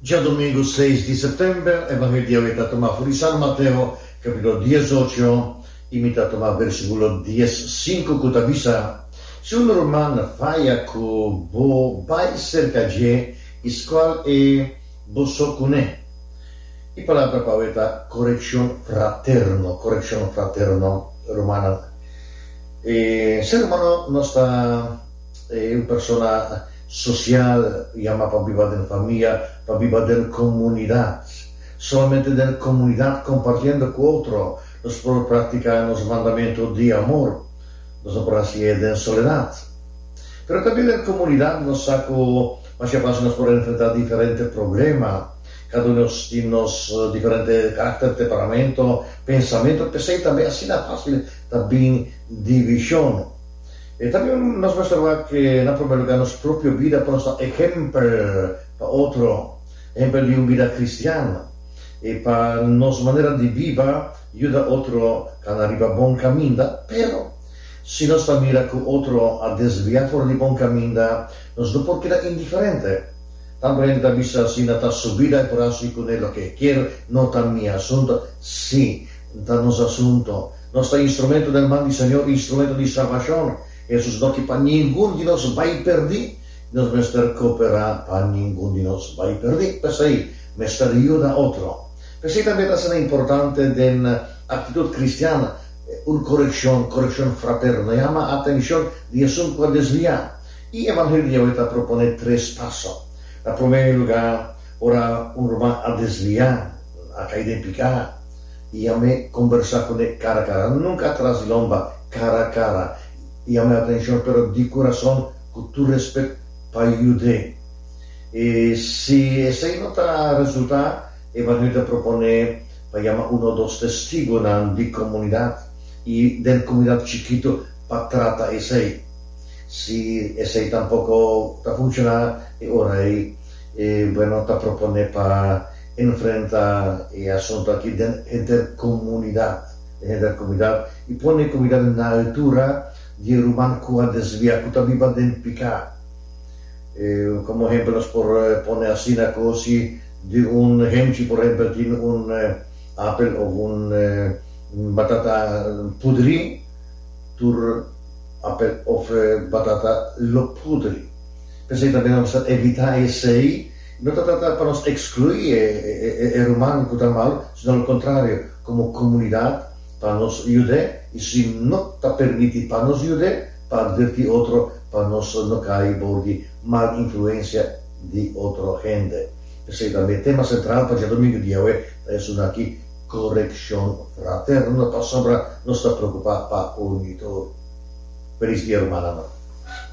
Djadomingu seis di September, Evangelio e ta tuma for di San Mateo, capitulo dies ocho, y mi ta tuma versiculo dies sinku cu ta bisa, Si un ruman faya cu bo, bay cerca dje y scual e bo so cune. E palabra pau e ta coreccion fraterno, coreccion fraterno, rumannan. E sermano nos ta. E un persona sosial yama pa biba den famia, pa biba den komunidat. Solamente den komunidat kompartiendo ku otro nos por praktiká nos mandamentu di amor. Nos no por hasi e den soledat. Pero tambe den komunidat nos sa ku mas ke pas nos por enfrentá diferente problema. Kada un di nos tin nos diferente karakter, temperamentu, pensamentu, p'esei tambe asina fásil ta bin divishon. E ta bin nos muestra awor cu na prome lugar nos propio bida por nos ta ehempel pa otro, ehempel di un bida cristiano, y pa nos manera di biba yuda otro cana riba bon caminda. Pero, si nos ta mira cu otro a desvia for di bon caminda, nos no por keda indiferente. Tanto hende ta bisa asina, Ta su bida, e por haci cu ne loke e kier, no ta mi asunto. Sí, ta nos asunto. Nos ta instrumento den man di Señor, instrumento di salbacion. Esos no ki pa ningun di nos bai perdi, i nos mester coopera pa ningun di nos bai perdi. P'esei, mester yuda otro. P'esei tambe ta asina importante den actitud cristian un coreccion, coreccion fraterno. No yama atencion di esun cu a desvia. I Evangelio di Yahweh ta propone tres paso. Na promé lugar, ora un ruman a desvia, a cai den picá, y ami combersa cune cara cara, nunca atras di lomba, cara cara, y ami atencion pero di curazon cu tur respet pa yude. Y si esey no ta resulta, evangelio ta propone pa yama uno o dos Testigonan di comunidad y den comunidad chikito pa trata esey. Si esey tampoco ta funciona, e ora ey, bueno, ta propone pa. Enfrenta e asuntu aki den interkomunidat, den interkomunidat, i pone e komunidat na altura di e ruman ku a desvia, ku ta biba den piká. Komo ehempel nos por pone asina ku si di un hemchi, por ehempel, tin un apel òf un batata pudri, tur apel òf batata lo pudri. P'esei tambe nos ta evitá esei. No ta trata pa nos exclui e ruman cu ta mal, sino lo contrario, como comunidad pa nos yud'e y si no ta permiti pa nos yud'e, pa adverti otro pa nos no cay bou di mal influencia di otro hende. P'esey tambe e tema central pa djadomingo di yawe ta esuna aki, Correccion fraterno, pasobra nos ta preocupa pa un y tur. Felis dia rumannan.